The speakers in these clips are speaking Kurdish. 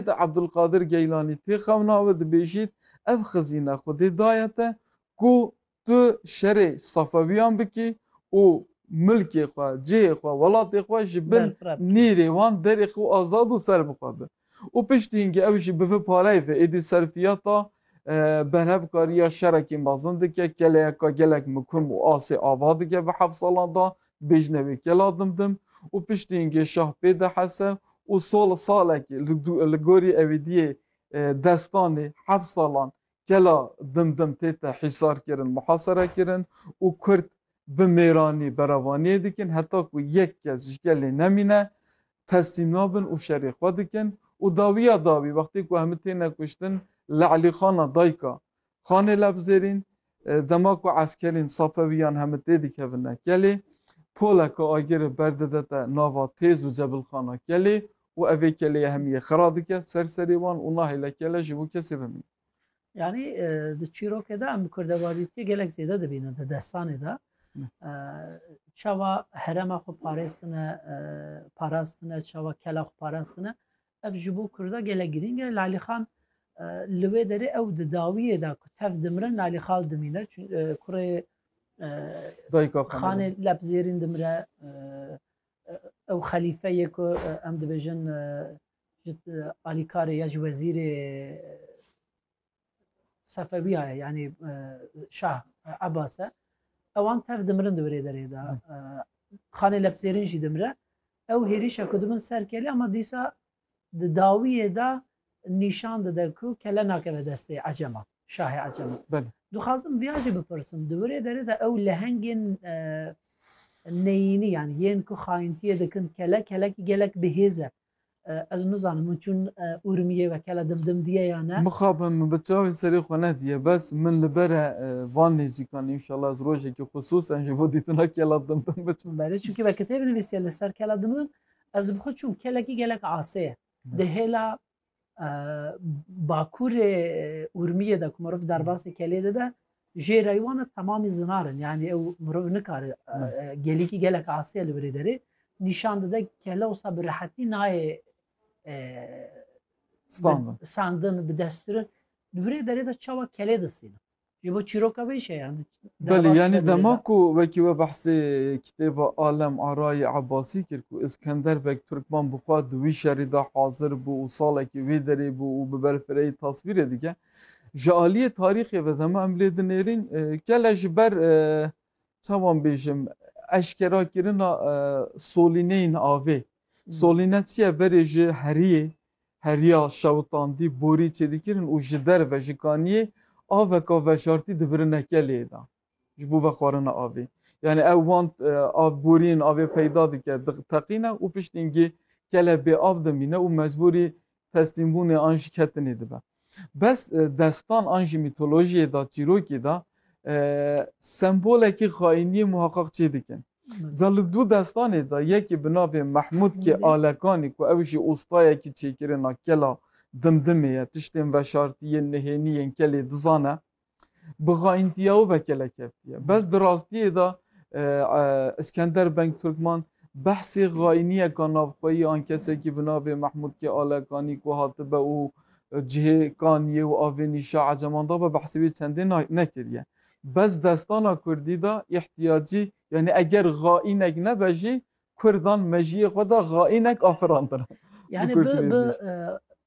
Seyîd Ebdulqadir Geylanî tê xewna we dibêjît, Ev xizîne Xwedê daye te ku tu şerê Safewîyan bikî û milkê xwe, cihê xwe, welatê xwe ji bin nîrê wan derê xwe azad û ser bi xwe bi. Û piştî hingî ew jî bi vi pareyê ve êdî serfîyata berhevkarîya şerekî mezin dike, keleyeka gelek mikum û asê ava dike bi heft salan de, Bêjine wê kela dimdim û piştî îngê şah pê de hese û sol salekî li gorî Ewîdiyê destanê heft salan kela dimdim tête hîsarkirin, muhaserekirin û kurd bi mêranî berevaniyê dikin heta ku yek kes ji kelê nemîne teslîm nabin û şerê xwe dikin û dawiya dawî wextê ku hemû têne kuştin li Elîxana dayika Xanê Lebzêrîn, Dema ku eskerên Safewîyan heme tê dikevine kelê, poleke agirê ber didete nava Têz û Cebilxana kelê û ev ê kelê hemî yê xira dike ser serê wan û nahêle kele ji bo kesê bimîne. Yanî di çîrokê de em bi kurdevalîtiyê gelek zêde dibînin di destanê de. Çawa herema xwe parêstine, parastine, çawa kela xwe parastine. Ev ji bo Kurda gelek girîng e. Lalîxan li wê derê ew di dawiyê de ku tev dimirin Lalîxal dimîne kurê xanê lep zêrîn dimire ew xelîfe yê ku em dibêjin ji alîkarê ya ji wezîrê Sefewiya ye yanî e, şah e, Abbas e ewan tev dimirin di birê derê de e, xanê lebsêrin jî dimire ew hêrîşa ku di min ser kelê ama dîsa di dawiyê de nîşan dide ku kele nakeve destê ecema şahê ecema Belê. dixwazim viya jî bipirsim di birê derê de ew lehengên e, neyînî yanî yên ku xayintiyê dikin kele kelekî gelek bihêz e Ez nizanim hûn çûn Urmiyê wekela dim dim diye ya ne. Mixabin min bi çavên serê xwe nediye bes min li ber e van nêzîkan înşallah ez rojekê xusûsen ji bo dîtina kela dim dim biçim. Belê çunkî me kitêb nivîsiye li ser kela dim dim ez bi xwe çûm kelekî gelek asê ye di hêla Bakurê Urmiyê de ku meriv derbasê kelê dide jê rey wan e temamî zinar in yanî ew meriv nikare gelîkî gelek asê li birê derê nîşan dide kele wisa bi rehetî nayê sandin bi destkirin li birê derê de çawa kelê disînin Yê bo çîroka wê işe yani. Belê yani dema ku wekî we behsê kitêba Alem Arayî Ebasî kir ku Iskender Beg Turkman bi xwe di wî şerî de hazir bû û salekî wê derê bû û bi berfireyî tasvîrê dike. Ji aliyê tarîxê ve dema em lê dinêrîn gele ji ber çawan bêjim eşkera kirina solîneyên avê. Solîne çi ye berê ji heriyê Heriya şewitandî borî çêdikirin û ji derve ji kaniyê aveka veşartî dibirine kelê de ji bo vexwarina avê. Yanî ew wan av boriyên avê peyda dike, diteqîne û piştîngî kele bêav dimîne û mecbûrî teslîmbûnê an jiketinê dibe. Bes destan an jî mîtolojiyê de, çîrokê de sembolekî xaîniyê muheqeq çê dikin. De li du destanê de yekê bi navê Mehmûdkê Alekanî ku ew jî ostayekî çêkirina kela Dimdimê ye, tiştên veşartiyên nihênî yên kelê dizane. Bi xaîntiya û vekelekeftiya. Bes di rastiyê de Iskender Beng Turkman behsê xaîniyeka navxweyî an kesekî bi navê Mehmûd K. Alekanî ku hatibe û cihê Kaniyê û avê nîşa Eceman de be behsê wî çendê nekiriye. Bes destana kurdî de îhtiyacî yanî eger xaînek nebe jî Kurdan mejiyê xwe de xaînek afirandin. Yani bi bi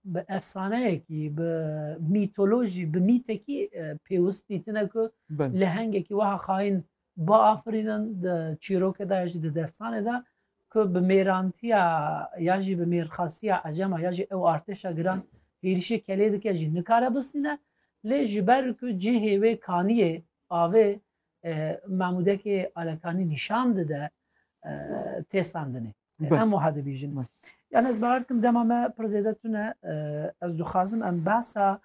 bi efsaneyekî bi mîtolojî bi mîtekî pêwist dîtine ku lehengekî wiha xaîn biafirînin di çîrokê de ya jî di destanê de ku bi mêrantiya ya jî bi mêrxasiya ecema ya jî ew artêşa giran hêrişê kelê dike jî nikare bisîne lê ji ber ku cihê wê kaniyê avê Mamûdekê Alekanî nîşan dide têsandinê. Em wiha dibîjin. Yani ez bawer dikim dema me pir zêde tune ez dixwazim em behsa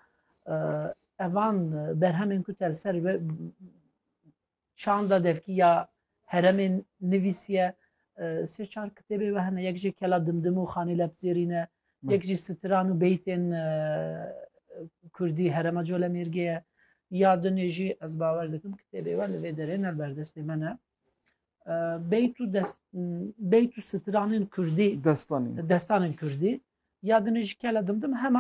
evan berhemên ku tel ser çanda devkî ya heremên nivîsiye sê çar kitêbê we hene yek jê kela dimdim û xanê lebzêrîne Yek jî stran û beytên kurdî Herema Colemêrgê ye. Ya dinê jî ez bawer dikim kitêbê we li vê derê ne li ber destê me ne. Beyt û dest beyt û stranên kurdî destanên destanên kurdî ya dinê jî kele dimdim heman